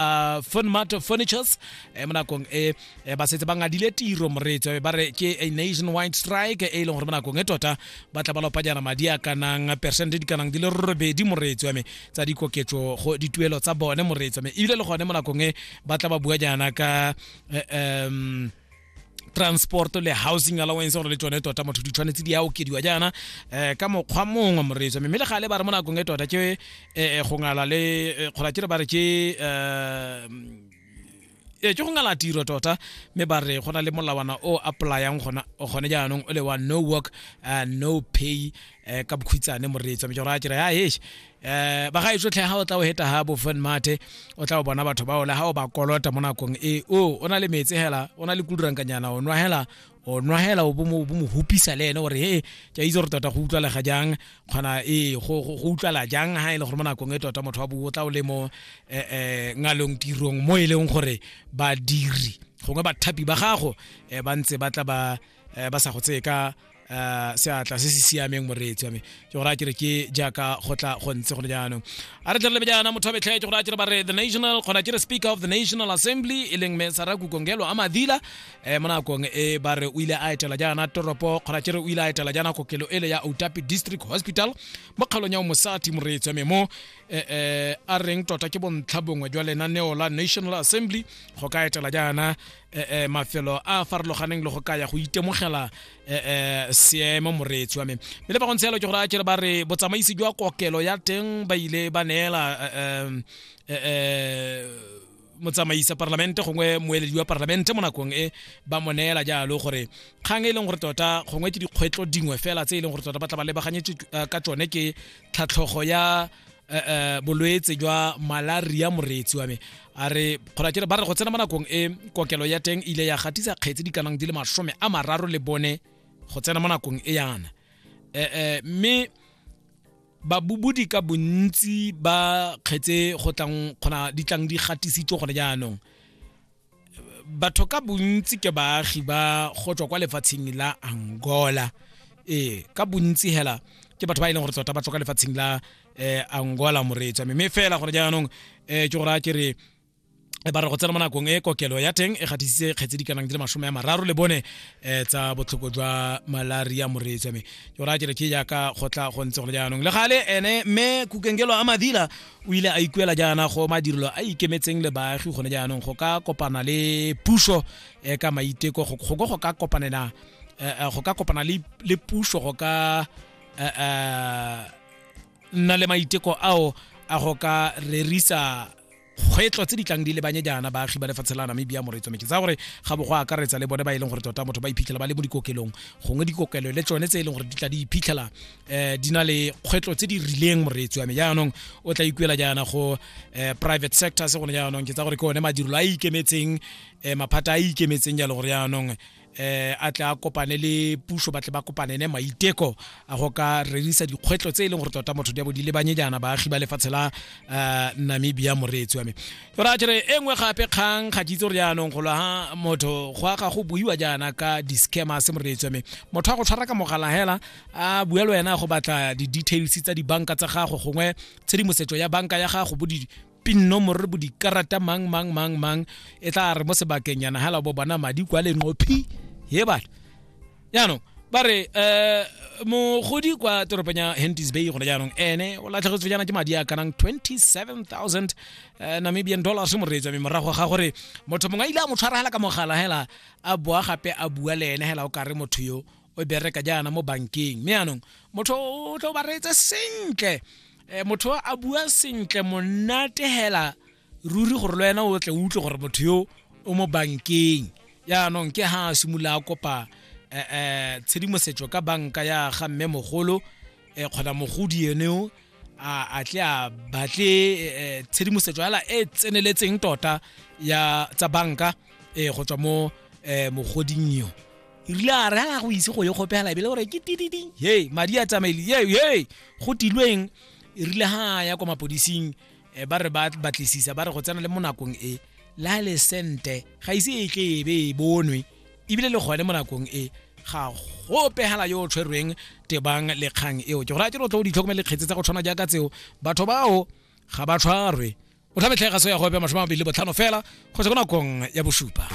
uh, Funmart Furnitures eh, mo nakong e eh, ba setse ba ngadile tiro moreetso ba re ke a nationwide strike e leng gore mo nakong e tota ba tla ba lopa jana madi a kanang percent di kanang di le robedi moreetso ya me tsa dikoketso go dituelo tsa bone moreetso me ebile le gone mo nakong e ba tla ba bua jana ka um transport le housing allowance gore le tsone tota motho di tshwanetse di a okediwa jaana um ka mokgwa mongwe moreetso mme le gale ba re mo nakong e tota ke um go ngala le eh, kgola ke re ba re ke um ee ke go ngala tiro tota mme ba re go na le molawana o applyang gona gone jaanong o le wa no work uh, no pay um ka bokhwitsane moreetso mme ke gore a kere ya hesh eh bagaetso tlhe ga o tla o heta ha bo fun mate o tla o bona batho ba ole ha o ba kolota mo nakong e o o na le metsi hela o na le kudurankanyana o nwa hela o nwa hela o bo mo hupisa le ene gore he ke itse gore tota go utlwalega jang kgona e go utlwala jang ha e le gore mo nakong e tota motho wa bo o tla o le mo eh, eh ngalong tirong mo e leng gore badiri gongwe bathapi ba gago eh, ba ntse ba tla ba um ba sa go tseye ka um seatla se se siameng moreetsi wa me ke gore a kere ke jaaka go tla go ntse gone jaanong a re tlelelebe jaana motho wa betlhe ke gore a kere ba re the national kgona kere speaker of the national assembly e leng me sara kukongelo a madila um mo nakong e ba re o ile a etela jaana toropo kgona kere o ile a etela jaana kokelo ele ya outapi district hospital mo kgaolong ya omosati moreetsi wa me mo um a reng tota ke bontlha bongwe jwa lenaneo la national assembly go ka etela jaana eh, eh, mafelo a a farologaneng le go kaya go itemogela eh, seemo moreetsi wa me mme le ba go ntshelo ke gore a kere ba re botsamaisi jwa kokelo ya teng ba ile ba neela motsamaisa parlamente gongwe moeledi wa parlamente mo nakong e ba mo neela jalo gore kgang e leng gore tota gongwe ke dikgwetlo dingwe fela tse e leng gore tota ba tla ba lebaganyetse eh, ka tsone ke tlhatlhogo ya eh, eh, bolwetse jwa malaria moreetsi wa me a re kgolakele ba re go tsena mo nakong e kokelo ya teng ile ya gatisa kgetse di kanang di le masome a mararo le bone go tsena mo nakong e yana um mme babubudi ka bontsi ba kgetse go tlang kgona di tlang di gatisitswe gone jaanong batho ka bontsi ke baagi ba go tswa kwa lefatsheng la angola ee ka bontsi hela ke batho ba e leng gore tota ba tswa ka lefatsheng la eh, angola moreetswa mme mme fela gore jaanong eh, ke gore a ke re e ba re go tsena mo nakong e kokelo ya teng e gatisitse kgetse di kanang di le masome ya mararo le bone um tsa botlhoko jwa malaria moreetswa me ke gore a ke re ke jaaka go tla go ntse gone jaanong le gale ene mme kukengelo a madila o ile a ikuela jaana go madirelo a ikemetseng le baagi gone jaanong go ka kopana le puso eh, ka maiteko go go go ka kopanela eh, eh, go ka kopana le le puso go ka eh, eh, nna le maiteko ao a go ka rerisa kgwetlo tse di tlang di lebanye jaana baagi ba lefatshe la namibia moretso meke tsa gore ga bo go akaretsa le bone ba e leng gore tota motho ba iphitlhela ba le mo dikokelong gongwe dikokelo le tsone tse e leng gore di tla di iphitlhela eh di na le kgwetlo tse di rileng moreetsi wa me jaanong o tla ikuela jaana go eh, private sector se gone jaanong ke tsa gore ke one madirelo a ikemetseng eh, maphata a ikemetseng jalo gore jaanong eh a tla kopane le puso ba tle ba kopane ne maiteko a go ka rerisa dikgwetlo tse e leng gore tota motho di a bo di lebanye jaana baagi ba lefatshe la eh, namibia moreetsi wa me gore a jere e nngwe gape kgang ga ke itse gore jaanong golo ha motho go a ga go buiwa jaana ka di-scammers moreetsi wa me motho a go tshwara ka mogala hela a bua le wena go batla di-details tsa dibanka tsa gago gongwe tshedimosetso ya banka ya gago bo pin nomoro bo dikarata mang mang mang mang e tla re mo sebakeng yana hala bo bona madi kwa lenqophi ye batho jaanong ba re um mogodi kwa toropong ya hentis bay gone jaanong ene o latlhegetswe jaana ke madi a kanang 27000 eh, namibian dollars moreetswa mme morago ga gore motho mongwe a ile a mo tshwaragela ka mogala hela a boa gape a bua le ene hela o kare motho yo o bereka jaana mo bankeng mme anong motho o tlo ba reetse sentle um motho a bua sentle monate hela ruri gore le wena o tle o utlwe gore motho yo o mo bankeng yaanong ke ha a simolola a kopa um tshedimosetso ka banka ya ga mme mogolo um kgona mogodi ene o a tle a batle tshedimosetso hela e tseneletseng tota ya tsa banka um go tswa mo um mogoding yo e rile a re a go ise go ye kgopela ebile gore ke tididi ye madi a tsamaile ye ye go tilweng e rile ha ya kwa mapodising eh, ba re ba batlisisa ba re go tsena le mo nakong e la le sente ga ise e tle e be e bonwe ebile le gone mo nakong e ga go pegela yo o tshwerweng tebang le kgang eo ke gore a ke re o tlo o ditlhokomele kgetse tsa go tshwana jaaka tseo batho bao ga ba tshwarwe o tlhametlhega so ya go epa masome a mabedi le botlhano fela go se ko nakong ya bosupa